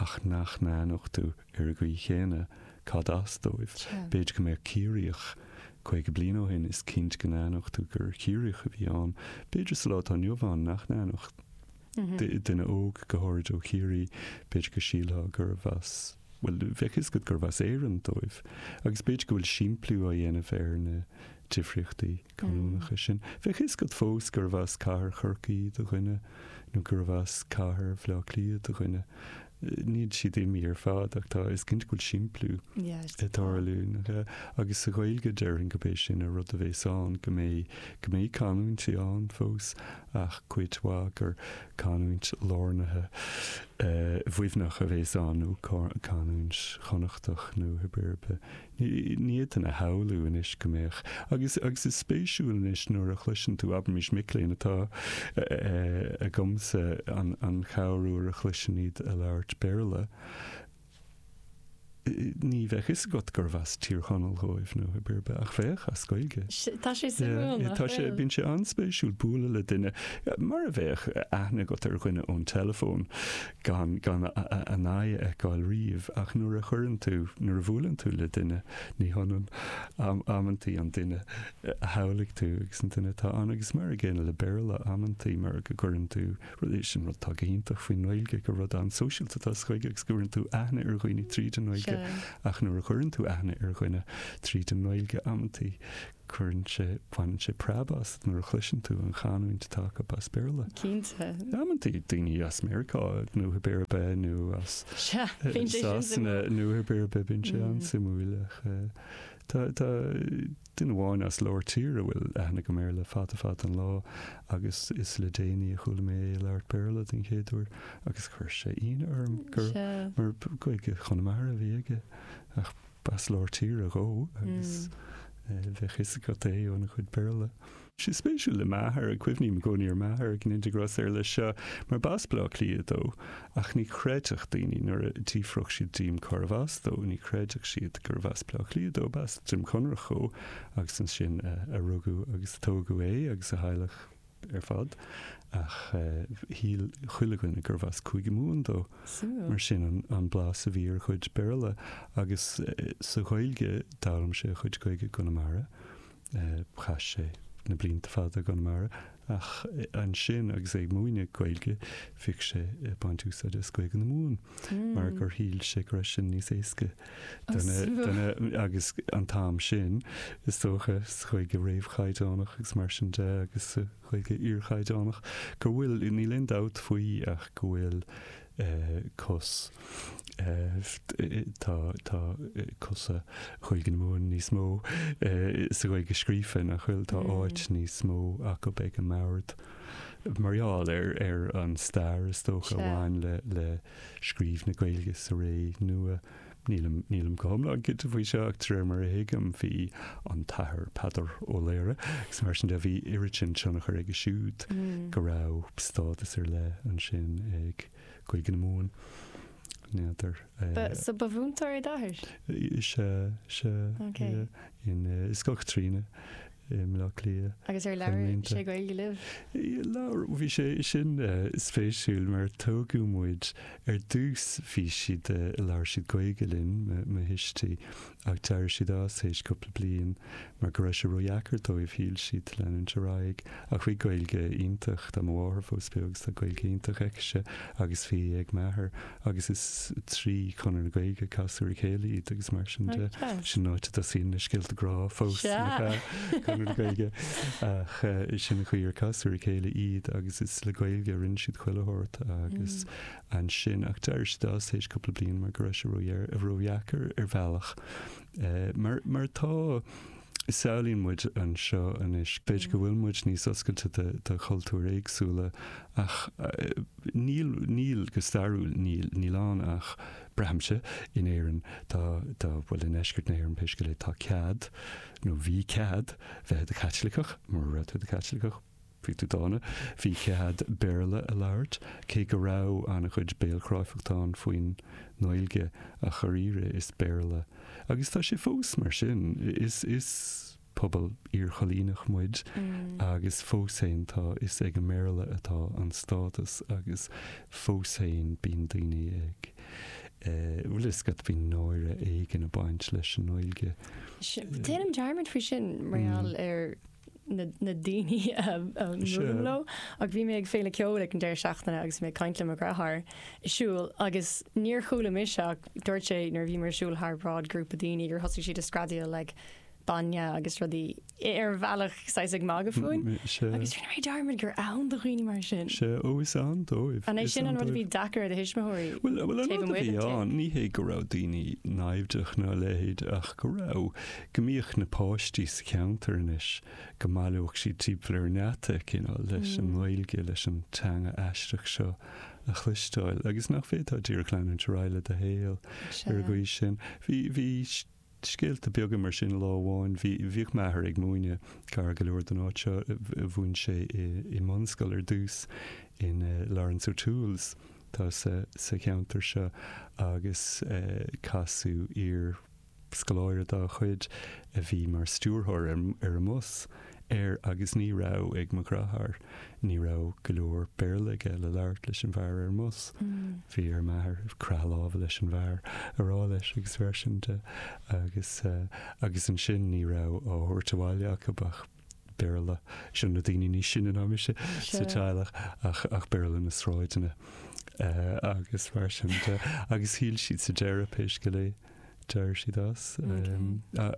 ach nach n-aithneodh tú ar an gcaoi chéanna cad as dóibh. B'fhéidir go mbeadh Ciarraíoch, 50 bliain ó shin, is cinnte go n-aithneodh tú gur Ciarraíoch a bhí ann, b'fhéidir sa lá atá inniu ann nach n-aithneodh, duine óg, go háirid ó Chiarraí, b'fhéidir go sílfeá gurbh as, bhuel, bheadh a fhios agat gurbh as Éirinn dóibh. Agus b'fhéidir go bhfuil simpliú á dhéanamh ar na. difríochtaí canúnacha sin. Bheadh fhios agat fós gurbh as cathair Chorcaí do dhuine nó gurbh as cathair Bhaile Átha Cliath do dhuine. Níl siad imithe ar fad ach tá, is cinnte go bhfuil simpliú ag tarlú. Agus sa Ghaeilge, déarfainn gurb é sin an rud a bhéas ann, go mbeidh, go mbeidh canúintí ann fós ach cuid mhaith gur canúint lárnaithe Mhuimhneach a bhéas ann nó canúint Chonnachtach nó pé ar bith Ní fhéadfainn a shamhlú anois go mbeadh. Agus is spéisiúil anois nuair a chloiseann tú, abraimis, mic léinn atá agamsa an chéad uair a chloisim iad ag labhairt Béarla, ní bheadh fhios agat gurbh as Tír Chonaill dhóibh nó pé ar bith, ach bheadh, as Gaeilge. Tá sé suimiúil nach bhfuil? Bíonn sé an-spéisiúil bualadh le duine, mar a bheadh aithne agat ar dhuine ón teileafón. gan gan a n-aghaidh a fheiceáil riamh, ach nuair a chuireann tú, nuair a bhuaileann tú le duine, ní hionann amantaí an duine a shamhlaigh tú agus an duine atá ann. Agus mar an gcéanna le Béarla, amantaí mar go gcuireann tú rud, sin rud atá go hiontach faoin nGaeilge, gur rud an-sóisialta atá sa Ghaeilge agus go gcuireann tú aithne ar dhaoine tríd an nGaeilge, ach nuair a chuireann tú aithne ar dhuine tríd an nGaeilge, amantaí, cuireann sé, baineann sé preab asat nuair a chloiseann tú an chanúint atá acu as Béarla. Cinnte. Amantaí daoine as Meiriceá nó pé ar bith nó as Sasana nó pé ar bith bíonn sé an-suimiúil ach tá duine amháin as lár tíre a bhfuil aithne agam air le fada fada an lá agus is le déanaí a chuala mé é ag labhairt Béarla den chéad uair agus chuir sé ionadh orm mar Gaeilge Chonamara a bhí aige ach B'as lár tíre dhó agus bheadh 'fhios agat é óna chuid Béarla. Sé spéisiúil le m'athair, cuimhním i gcónaí ar m'athair i ndáil go mór leis seo, mar b'as Bleá Cliath dó, ach ní chreidfeadh daoine nuair a d'fhiafródh siad díom cárbh as dó, ní chreidfeadh siad gurbh as Bleá Cliath dó, b'as Droim Conrach dhó agus ansin a rugadh agus a tógadh é agus a theaghlach. ar fad, ach shíl chuile dhuine gurbh as Cúige Mumhan dó. Mar sin an blas a bhí ar a chuid Béarla. Agus sa Ghaeilge, d'fhoghlaim sé a chuid Gaeilge i gConamara. Chaith sé na blianta fada i gConamara, ach ansin agus é ag múineadh Gaeilge, bhíodh sé ag baint úsáide as Gaeilge na Mumhan. mar gur shíl sé go raibh sin níos éasca do na, do na, agus an t-am sin, is dócha, sa Ghaeilge réamhchaighdeánach agus mar sin de agus sa Ghaeilge iarchaighdeánach, go bhfuil, níl aon dabht faoi ach go bhfuil cos, tá, tá cosa Ghaeilge na Mumhan níos mó sa Ghaeilge scríofa nach bhfuil, tá áit níos mó acu ag an mbord. mar gheall ar an stair, is dócha, a bhain le scríobh na Gaeilge sa ré nua. Nílim go hiomlán cinnte faoi seo ach de réir mar a thuigim bhí an tAthair Peadar Ó Laoghaire agus mar sin de, bhí oiread sin tionchair aige siúd go raibh stádas ar leith ansin ag Gaeilge na Mumhan. N'fheadar. So ba mhúinteoir é d'athair? Is ea, is ea. I Scoil Chaitríona i mBleá Cliath. Agus ar labhair sé Gaeilge libh? Labhair, bhí sé, sin spéisiúil mar tógadh muid, ar dtús bhí siad, labhair siad Gaeilge linn, mo thuistí, ach d'éirigh siad as théis cúpla bliain mar go raibh sé ródheacair dóibh, shíl siad, leanúint ar aghaidh, ach bhí Gaeilge iontach, tá mo mháthair fós beo agus tá Gaeilge iontach aici, agus bhí ag m'athair, agus is trí Chonradh na Gaeilge a casadh ar a chéile iad agus mar sin de. Sin an áit a dtosaíonn na scéalta grá fós le Conradh na Gaeilge ach sin an chaoi ar casadh ar a chéile iad agus is le Gaeilge a rinne siad chuile shórt agus ansin ach d'éirigh siad as tar éis cúpla bliain mar go raibh sé ródheacair ar bhealach mar mar tá samhlaíonn muid anseo anois. B'fhéidir go bhfuil muid níos oscailte do chultúir éagsúla ach níl, go stairiúil níl. Níl ann ach, braithimse, in Éirinn, tá, bhuel, i ndeisceart na hÉireann pé scéal é, tá cead, nó bhí cead, bheith i do Chaitliceach, mura raibh tú i do Chaitliceach, Bhí tú dána. Bhí cead Béarla a labhairt, cé go raibh an-chuid béalchráifeacht ann faoin nGaeilge, ach dháiríre is Béarla, agus tá sé fós mar sin, is is pobal iarchoilíneach muid agus fós féin tá, is ag an mBéarla atá an stádas agus fós féin bíonn daoine ag eh, bhfuil a fhios agat, bíonn náire éigin ag baint leis an nGaeilge. Déanaim dearmad faoi sin mar gheall ar. na daoine a mbuailim leo, ach bhí mé ag féile ceoil ag an deireadh seachtaine agus mé ag caint le mo dheartháir ag siúl agus níor chuala mise ach dúirt sé nuair a bhí mé ag siúl thar bráid grúpa daoine gur thosaigh siad ag screadaíl like bainne agus rudaí ar bhealach saghas ag magadh fúinn agus rinne mé dearmad gur ann do dhaoine mar sin. Sea, ó is ann dóibh. An é sin an rud a bhí deacair ar do thuismitheoirí taobh amuigh den teach? Bhuel an rud a bhí ann, ní hé go raibh daoine naimhdeach ná a leithéid ach go raibh go mbíodh na páistí sa cheantar anois, go mbaileodh siad timpeall ar an ngeata, you know, leis an nGaeilge, leis an teanga aisteach seo a chloisteáil agus nach bhféadfá díreach leanúint ar aghaidh le do shaol ar an gcaoi sin. Bhí, bhí scéalta beaga mar sin lá amháin, bhí, bhíodh m'athair ag múineadh gar go leor don áit seo, mhúin sé i, i mbunscoil ar dtús in eh Laurence O'Toole's atá sa, sa cheantar seo agus casadh iar, Scoláire dá chuid a bhí mar stiúrthóir ar an mbus, ar, agus ní raibh ag mo dheartháir, ní raibh go leor Béarla aige le labhairt leis an bhfear ar an mbus. Bhí ar m'athair croitheadh láimhe leis an bhfear a rá leis agus mar sin de agus, agus ansin ní raibh á thabhairt abhaile acu ach. Béarla, seo na daoine níos sine ná mise sa teaghlach, ach, ach Béarla na sráideanna agus mar sin de. Agus shíl siad sa deireadh, pé scéal é, d'éirigh siad as.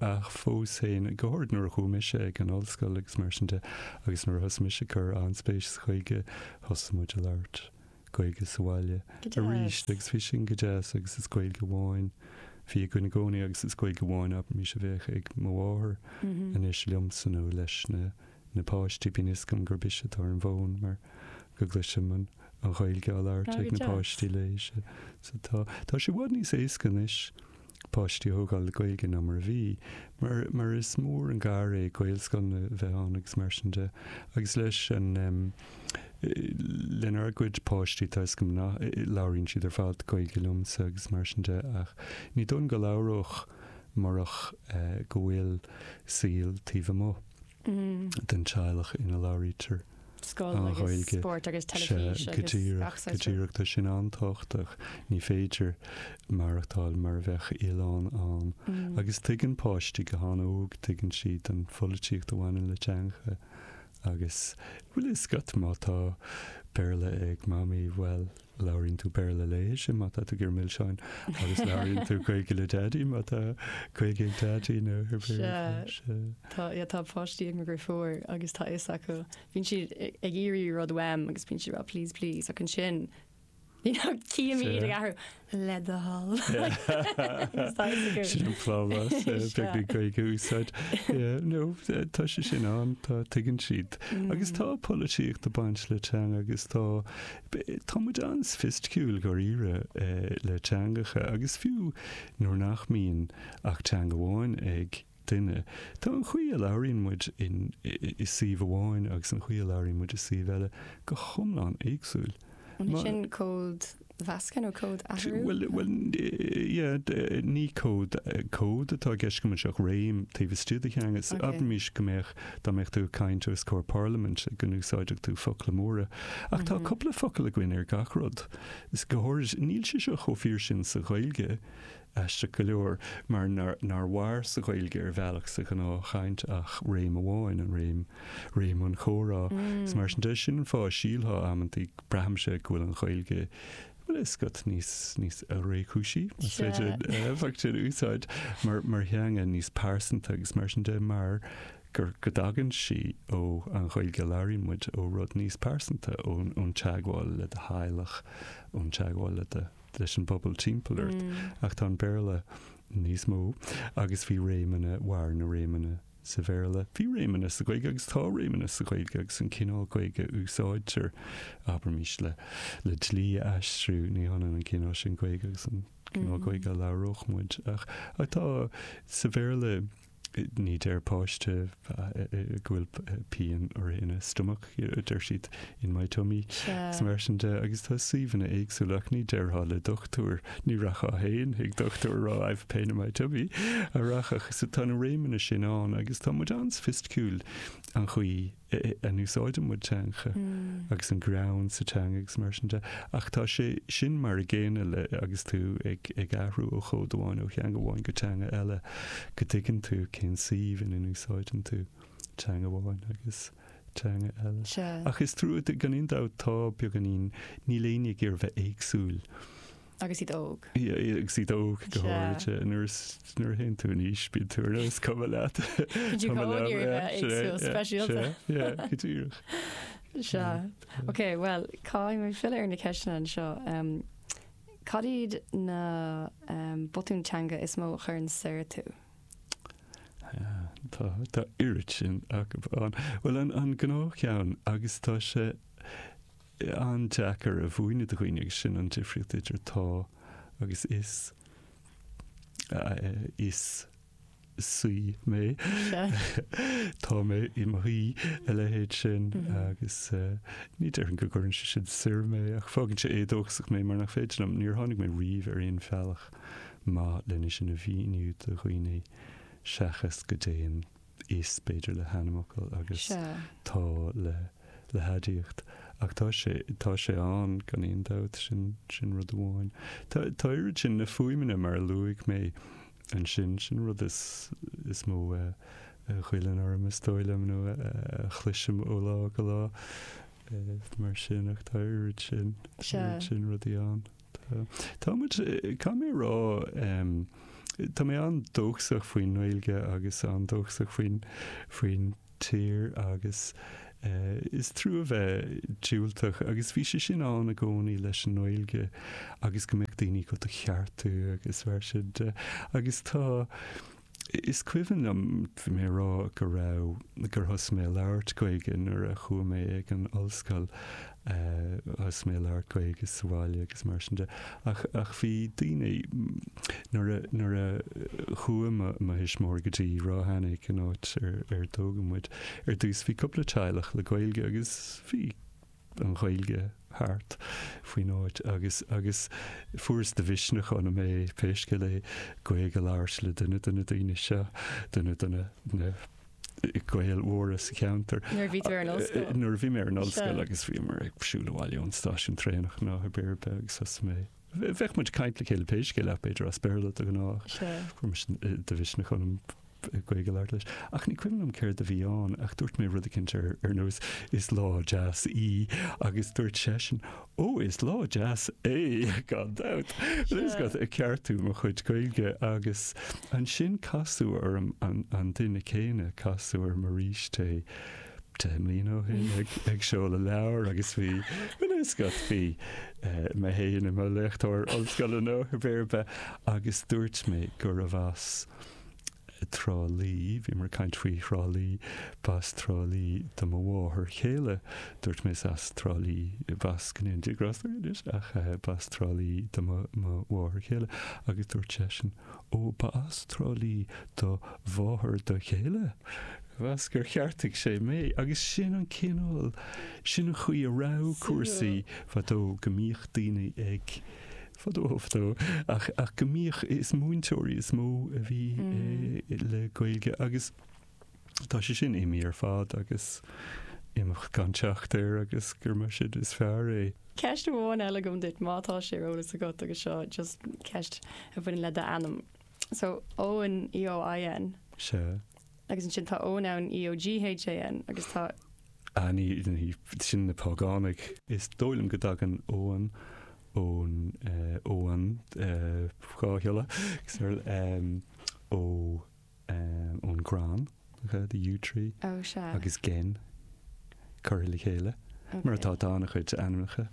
Ach fós féin, go háirid nuair a chuaigh mise ag an ollscoil agus mar sin de, agus nuair a thosaigh mise cur an-spéis sa Ghaeilge, thosaigh muid a labhairt Gaeilge sa bhaile arís agus bhí sin go deas agus is Gaeilge amháin a bhí againn i gcónaí agus is Gaeilge amháin abraimis a bheadh ag mo mháthair anois liomsa nó leis na na páistí, bíonn a fhios agam gurb ise atá ar an bhfón mar go gcloisim an Ghaeilge á labhairt ag na páistí léi so tá sé i bhfad níos éasca anois. páistí a thógáil le Gaeilge ná mar a bhí, mar mar is mór an gar é Gaelscoileanna a bheith ann agus mar sin de. Agus leis an em. lenár gcuid páistí tá 'fhios agam nach, labhraíonn siad ar fad Gaeilge liomsa agus mar sin de ach ní dóigh liom go labhródh murach eh go bhfuil saol taobh amuigh. den teaghlach ina labhraítear an Ghaeilge. Sea, go díreach, go díreach. Tá sin an-tábhachtach. Ní féidir maireachtáil mar a bheadh oileán ann. Agus tuigeann páistí go han-óg, tuigeann siad an pholaitíocht a bhaineann le teangacha. Agus, bhuel, 'fhios agat má tá Béarla ag Mamaí, bhuel, Labhraíonn tú Béarla léise má tá tú ag iarraidh milseáin agus labhraíonn tú Gaeilge le Daidí má tá Gaeilge ag Daidí nó ar Bhéarla. Sea, tá páistí ag mo dheirfiúr agus tá a fhios acu. Bíonn siad ag iarraidh rud uaim agus bíonn siad ag rá please, please ach ansin you know cífidh mé iad ag athrú le do thoil. Sin an plámás beag na Gaeilge a úsáid. No, tá sé sin ann, tá, tuigeann siad. Agus tá polaitíocht ag baint le teanga agus tá Tá muid an-soifisticiúil dháiríre le teangacha agus fiú nuair nach mbíonn ach teanga amháin ag duine, tá an chaoi a labhraíonn muid i suíomh amháin agus an chaoi a labhraíonn muid i suíomh eile go hiomlán éagsúil. An é sin códmheascadh nó códathrú? Bhuel, ní cód atá i gceist agam anseo ach réim taobh istigh de theanga. Abraimis go mbeadh Dá mbeadh tú ag caint os comhair Parlaimint go n-úsáidfeadh tú focla móra. Ach tá cúpla focal againn ar gach rud. Is go háirid, níl sé seo chomh fíor sin sa Ghaeilge, aisteach go leor, mar nár mhair sa Ghaeilge ar bhealach sa ghnáthchaint ach réim amháin, an réim, réim an chomhrá. Is mar sin de, sin an fáth a sílfeá amantaí, braithimse, go bhfuil an Ghaeilge Bhuel, 'fhios agat níos, níos réchúisí, más féidir an focal sin a úsáid, mar, mar theanga, níos pearsanta agus mar sin de, mar gur, go dtagann sí ó an Ghaeilge a labhraíonn muid, ó rud níos pearsanta, ón, ón teagmháil le do theaghlach, ón teagmháil le do, leis an bpobal timpeall ort. Ach tá an Béarla níos mó agus bhí réimeanna, mhair na réimeanna Sa Bhéarla, bhí réimeanna sa Ghaeilge agus tá réimeanna sa Ghaeilge agus an cineál Gaeilge a úsáidtear, abraimis, le le dlí a aistriú, ní hionann an cineál sin Gaeilge agus an cineál Gaeilge a labhródh muid. Ach ach tá, sa Bhéarla, ní deir páiste go bhfuil pian air ina stomach. deir siad 'in my tummy', is mar sin de, agus tá suíomhanna éagsúla ach ní déarfá le dochtúir, ní rachfá féin ag dochtúir a rá 'I've a pain in my tummy' a rachadh. So tá na réimeanna sin ann agus tá muid an-soifisticiúil an chaoi a n-úsáideann muid teanga agus an greann sa teanga agus mar sin de, ach tá sé sin mar an gcéanna le, agus tú ag ag athrú ó chód amháin, ó theanga amháin go teanga eile, go dtuigeann tú cén suíomh ina n-úsáideann tú teanga amháin agus. teanga eile. Sea. Ach is trua, gan aon dabht, tá, beagáinín, níl éinne ag iarraidh bheith éagsúil. Agus iad óg. Yeah, yeah, agus iad óg go Sea. háirithe. Nuair is nuair a théann tú in aois, bíonn tú ar nós cuma leat. Bíonn tú Cuma go leat, háirithe yeah, bheith sea, éagsúil, yeah, speisialta. sea, Yeah, go díreach. Sea. Ok, well, caithfidh mé filleadh ar na ceisteanna anseo. Um, Cad iad na um, botúin teanga is mó a chuireann soir tú? Tá tá oiread sin acu ann. Bhuel an an gnáthcheann agus tá sé an-deacair a mhúineadh do dhaoine agus sin an difríocht idir tá agus is is saoi mé tá mé i mo shaoi a leithéid sin agus ní déarfainn go gcuireann sé sin soir mé ach fágann sé éadóchasach mé mar nach féidir liom níor tháinig mé riamh ar aon bhealach. maith lena a mhíniú do dhaoine seachas go dtéann is b'fhéidir le hainmfhocal agus Sea. tá le le haidiacht. Ach tá sé tá sé ann gan aon dabht, sin sin rud amháin. Tá tá oiread sin na fuaimeanna mar a luaigh mé ansin, sin an rud is is mó a a ghoilleann orm is dóigh liom nó a a chloisim ó lá go lá mar sin ach tá oiread sin Sea. oiread sin rudaí ann. Tá. Tá muid, caithfidh mé a rá, tá mé an-dóchasach faoin nGaeilge agus an-dóchasach faoin, faoin tír agus is trua a bheith diúltach agus bhí sé sin ann i gcónaí leis an nGaeilge agus go mbeadh daoine go do cheartú agus mar sin de agus tá, Is cuimhin liom, bhí mé a rá go raibh, gur thosaigh mé a labhairt Gaeilge nuair a chuaigh mé ag an ollscoil, thosaigh mé a labhairt Gaeilge sa bhaile agus mar sin de. Ach, ach bhí daoine, nuair a, nuair a chuaigh mo, mo thuismitheoirí go dtí Ráth Eanaigh, an áit ar, ar tógadh muid, ar dtús bhí cúpla teaghlach le Gaeilge agus bhí, an Ghaeilge thart faoin áit agus agus fuaireas de mhisneach ionam é pé scéal é Gaeilge a labhairt le duine de na daoine seo, duine de na na Gaeil mhóra sa cheantar. Nuair a bhí tú ar an ollscoil? Nuair a bhí mé ar an ollscoil agus bhíomar ag siúl abhaile ón stáisiún traenach nó pé ar bith agus thosaigh mé, bheadh muid ag caint le céile pé scéal ach b'fhéidir as Béarla de ghnáth, fuaireas de mhisneach ionam. Gaeilge a labhairt leis. Ach ní cuimhin liom céard a bhí ann, ach dúirt mé rud eicínt ar ar nós Is lá deas í agus dúirt seisean Ó, is lá deas é, gan dabht! Agus é ag ceartú mo chuid Gaeilge agus ansin casadh orm an duine céanna, casadh orm arís é deich mbliana ó shin ag ag seoladh leabhair agus bhí bhuel is got bhí eh, mé fhéin i mo léachtóir ollscoile nó pé ar bith agus dúirt mé gurbh as Trá Lí, bhíomar ag caint faoi Thrá Lí, b'as Trá Lí do mo mháthair chéile. Dúirt mé, is as Trá Lí, b'as go ndéana Dia grásta uirthi anois, ach b'as Trá Lí do mo mháthair chéile. Agus dúirt seisean, ó, ba as Trá Lí do mháthair do chéile. Agus gur cheartaigh sé mé. Agus sin an cineál, sin an chaoi a raibh cúrsaí fadó, go mbíodh daoine ag fadó fadó, ach, ach go mbíodh, is múinteoirí is mó a bhí le Gaeilge agus tá sé sin imithe ar fad agus imeacht gan teacht air agus gura mar sin is fearr é. Ceist amháin eile agam duit, má tá sé ar eolas agat agus seo just ceist a bhaineann le d'ainm. So Eoin, EOIN. Sea. Agus ansin tá Eoghan ann, EOGHAN, agus tá. Ah, ní, ní, sin na págánaigh. Is dóigh liom go dtagann Eoghan ón, eh, Eoghan, eh, dhá shiolla, agus ar, em, ó, em, ón gcrann, the yew tree. Oh, sea. Agus gin, curtha le chéile. Okay. Mar atá, tá an-chuid ainmneacha.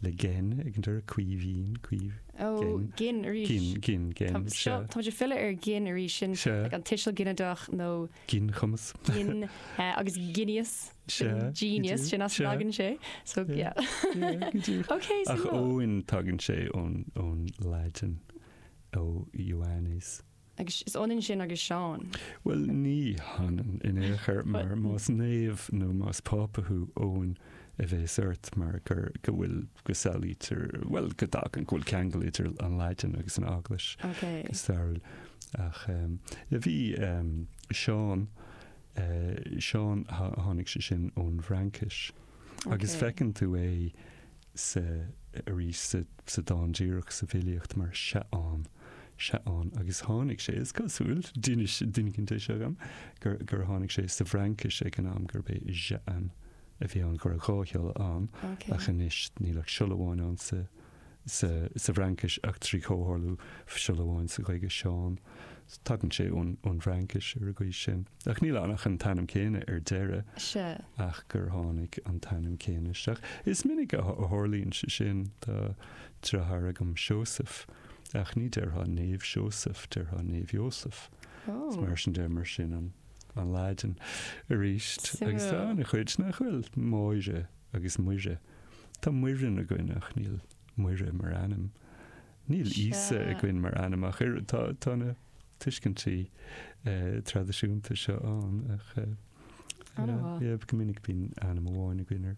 le gin, ag an deireadh, Caoimhín, caomh, Ó, gin, gin arís. gin, gin, gin, Tá- seo, sea. táimid ag filleadh ar gin arís, sin Sea. like an tuiseal ginideach nó Ginchumas. gin, eh, agus genius, Sea, sin go genius, dtí, sin as sea. a dtagann sé, so Sea. yeah. Sea, go dtí. Ok, so Ach no. Eoin, tagann sé ón, ón Laidin, ó Ioannis. Agus is ionann sin agus Seán. Bhuel, ní hionann in aon chor, mar más naomh nó más Pápa thú, Eoin a bheas ort mar gur, go bhfuil, go samhlaítear, bhuel, go dtagann, go bhfuil ceangal idir an Laidin agus an Eaglais go stairiúil. Ach bhí Seán, Seán, tháinig sé sin ón bhFraincis agus feiceann tú é, sa, arís sa, sa dán díreach sa bhfilíocht mar Seaán, Seaán agus tháinig sé, is cosúil, d'inis, d'innigh an deis agam, gur, gur tháinig sé sa bhFraincis ag an am gurb é Jean a bhí ann, go raibh dhá shiolla ann Ok. ach anois níl ach siolla amháin ann sa, sa, sa bhFraincis ach trí chomhtharlú siolla amháin sa Ghaeilge, Seán. Tagann sé ón, ón bhFraincis ar an gcaoi sin. Ach níl ann ach an t-ainm céanna ar deireadh. Sea. Ach gur tháinig an t-ainm céanna isteach. Is minic a tharlaíonn sé sin. Tá deartháir agam Seosamh, ach ní déarfá Naomh Seosamh, déarfá Naomh Iósaf. Is mar sin deir mar sin an Laidin. Arís, agus tá an-chuid nach bhfuil, Máire agus Muire. Tá Muireann againn ach níl Muire mar ainm. Níl Íosa againn mar ainm ach oiread. Tá na tuiscintí traidisiúnta seo ann ach go minic bíonn ainm amháin againn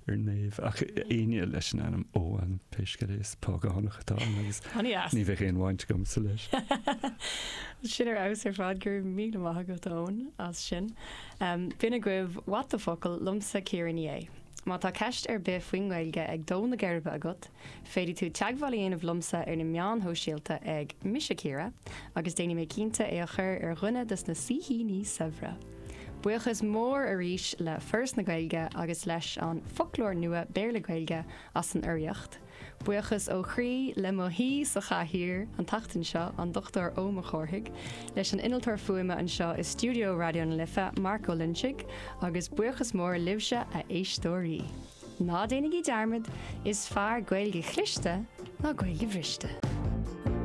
ar naomh ach éinne leis an ainm Eoghan pé scéal é, is págánach atá ann agus ní bheadh aon bhaint agamsa leis. Sin ar fheabhas ar fad, go raibh míle maith agat Eoin as sin. B'in é agaibh, What the focal liomsa Ciara Ní É. Má tá ceist ar bith faoin nGaeilge ag dó na geirbe agat, Féadfaidh tú teagmháil a dhéanamh liomsa ar na meáin shóisialta ag, Mise Ciara, agus déanfaidh mé cinnte é a chur ar dhuine dos na saoithíní saibhre! Buíochas mór arís le Foras na Gaeilge agus leis an Foclóir Nua Béarla-Gaeilge as an urraíocht. Buíochas ó chroí le mo shaoi sa chathaoir an tseachtain seo, an Dr Eoin Mac Cárthaigh, leis an Innealtóir Fuaime anseo i stiúideo Raidió na Life, Mark Ó Loinsigh, agus buíochas mór libhse, a éisteoirí! Ná déanaigí dearmad, is fearr Gaeilge chliste ná Gaeilge bhriste.